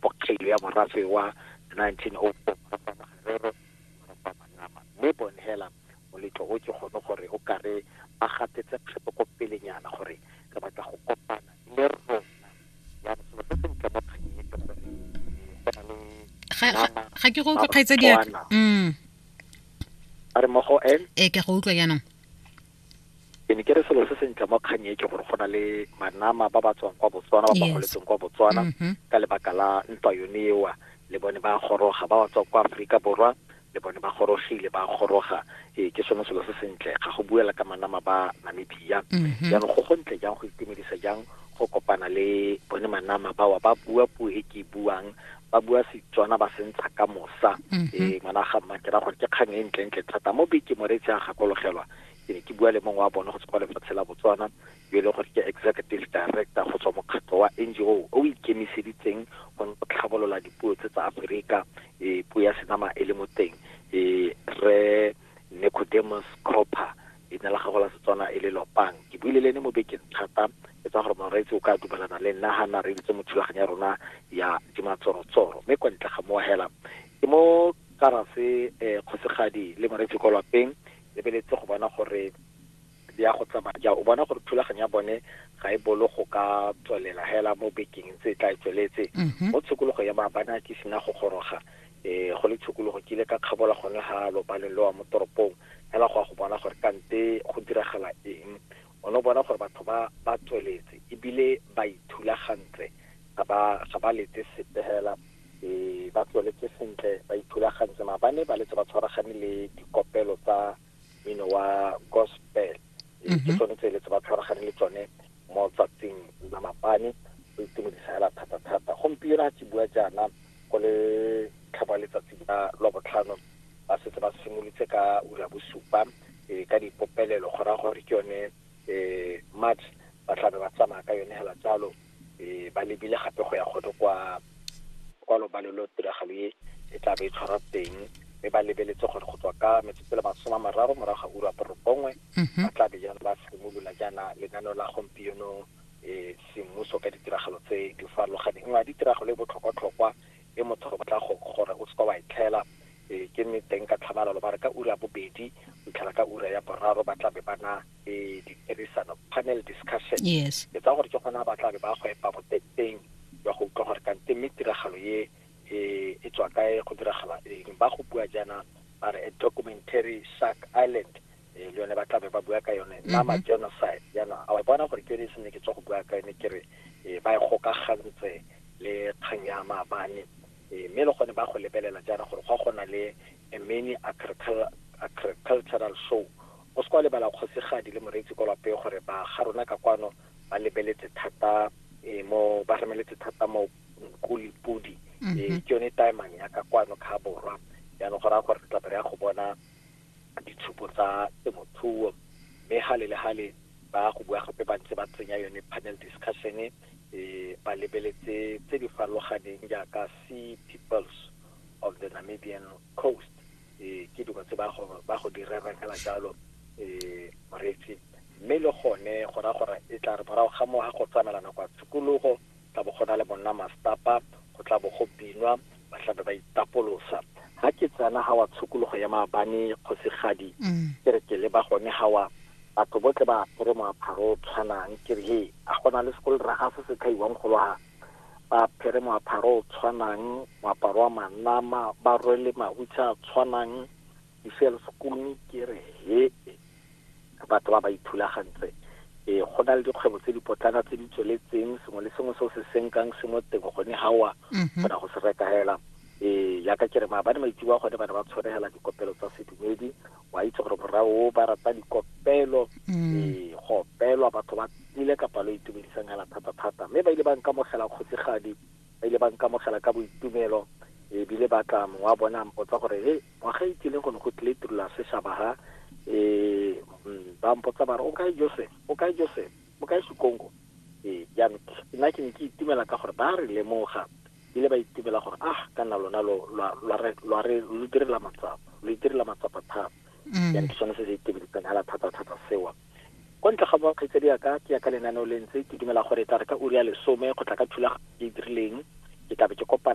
bokgelo ya morafe wa 1904 mme bon hela moletlo o ke gone gore o kare ba gatetse kgato ko pelenyana gore re batla go kopana le rona ya selo se sentle mo kganyeng ke gore go na le ga ke go utlwe kgaitsa diaka mm. a re mo go n e ke go utlwa jaanong ke ne ke re selo se sentle mo kgang e ke gore go na le manama ba ba tswang kwa botswana ba ba Yes. goletseng kwa botswana Mhm. ka lebaka la ntwa yone ewa le bone ba goroga ba ba tswang kwa aforika borwa le bone ba gorogile ba goroga ee ke sone selo se sentle ga go buela ka manama ba namibia Mhm. jaanong go gontle jang go itumedisa jang go kopana le bone manama bawa ba bua puo e ke e buang ba bua setswana ba sentsha ka mosa mm -hmm. e ngwana ga mma ke ra gore ke kgang e ntle ntle thata mo beke moretsi a gakologelwa ke ne ke bua le mongwe wa bone go tswa lefatshe la botswana yo e leng gore ke executive director go tswa mokgatlho wa ngo o ikemiseditseng go tlhabolola dipuo tse tsa aforika e puo ya senama e le mo teng e re Necodemus Cropper, leina la gagwe la Setswana e le Lopang. Ke buile le ene mo bekeng thata e tswa gore Moreetsi o ka dumalana le nna ha nna reeditse mo thulaganyo ya rona ya Dimatsorotsoro. Mme kwa ntle ga mowa hela, ke mo karase eh, Kgosigadi le Moreetsi kwa lapeng, lebeletse go bona gore di ya go tsamaya jang. O bona gore thulaganyo ya bone ga e bolo go ka tswelela hela mo bekeng tse e tla e tsweletse. Mo tshokologo ya Maabane a ke sena go goroga, E, go le tshokologo ke ile ka kgabola gone ga lopaleng le wa mo toropong fela go ya go bona gore kante go diragala eng. O ne o bona gore batho ba ba tsweletse ebile ba ithulagantse, ga ba ga ba letse sepe fela. E, ba tsweletse sentle, ba ithulagantse, mara ba ne ba letse ba tshwaragane le dikopelo tsa. mmino wa gospel ke mhm. tsone tse le tse ba tshwaragane le tsone mo tsatsing la mapane go itumedisa hela thata-thata gompieno a ke bua jaana go le tlhaba letsatsi la lwa botlhano ba setse ba simolotse ka ura bosupa um ka dipopelelo go raya gore ke yone um march ba tlabe ba tsamaya ka yone hela jalo e ba lebile gape go ya godo kwa kwa lobalo lo tiragalo e e tla be e tshwarwa teng mme ba lebeletse gore go tswa ka metsotso le masome a mararo morago ga ura borobongwe mhm. ba tla be jaana ba simolola jaana lenaneo la gompieno um semmuso ka ditiragalo tse di farologaneng nngwe ya ditiragalo e botlhokwatlhokwa e motho go batla gore o seka wa e tlhela um ke mme teng ka tlhamalalo ba re ka ura bobedi go tlhela ka ura ya boraro ba tla be ba na e ditirisano panel discussion yes ke tsa gore ke gona ba tla be ba go epa boteteng ya go utlwa gore kante mme tiragalo ye e e tswa kae go diragala eng ba go bua jaana ba re a documentary shark island eh, le yone ba tla be ba bua ka yone nama genocide jaana a wa bona gore ke yone e sene ke tswa go bua ka yone ke re eh, ba e gokagantse le kgang ya maabane Eh, mme le gone ba go lebelela jaana gore go a gona le a mini agricultural show O se ka wa lebala kgosigadi le moreetsi kwa lwapeng gore ba ga rona ka kwano ba lebeletse thata eh, mo ba remeletse thata mo kuli pudi mm -hmm. eh, ke yone taemang ya ka kwano ka borwa jaanong go raya gore re tlabe re ya go bona ditshupo tsa temothuo mme gale le gale ba go bua gape ba ntse ba tsenya yone panel discussion e eh, ba lebeletse tse di farologaneng jaaka sea peoples of the namibian coast ee ke dilo tse ba go ba go direrang ka jalo ee moreetsi mme le gone go ra gore e tla re morago ga mo ga go tsamela nako ya tshikologo tla bo go na le monna mastapa go tla bo go binwa ba tlabe ba itapolosa ga ke tsena ga wa tshokologo ya maabane kgosigadi mm. ke re ke le ba gone ga wa batho botle ba apere moaparo o tshwanang ke re he a gona le sekolo ra ga se se tlhaiwang golo ga ba apere moaparo o tshwanang moaparo wa manama ba rwele mahutshe a tshwanang diselskone ke re he batho ba ba ithulagantse e go na le dikgwebo tse dipotlana tse di tsweletseng sengwe le sengwe se o se senkang se mo teng gone gawa kgona go se reka fela e yaka ke re maabane maitsewa gone ba ne ba tshwaregela dikopelo tsa sedumedi wa itse gore morra o ba rata dikopelo mm. ee go opelwa batho ba tlile ka palo e itumedisang hela thata-thata mme ba ile ba nkamogela kgosigadi ba ile ba nkamogela ka boitumelo ebile ba tla mongwe wa bone a mpotsa gore he ngwaga e tlileng go ne go tlile tirula seshaba ha um ba mpotsa ba re o kae joseph o kae joseph o kae sekongo ee jaanong nna ke ne ke itumela ka gore ba re lemoga Bile ba itebela gore, Ah, ka nna lona lo, lwa, lwa re, lwa re, lo itirela matsapa. Lo itirela matsapa thata. Mm. Jaanong ke sone se se itebeletsang hela thata-thata sewa. Kwa ntle ga boa kgaitsadi ya ka, ke ya ka lenaneo le ntse, ke dumela gore e tla re ka ura ya lesome go tla ka thulaganyo e e dirileng, ke tla be ke kopana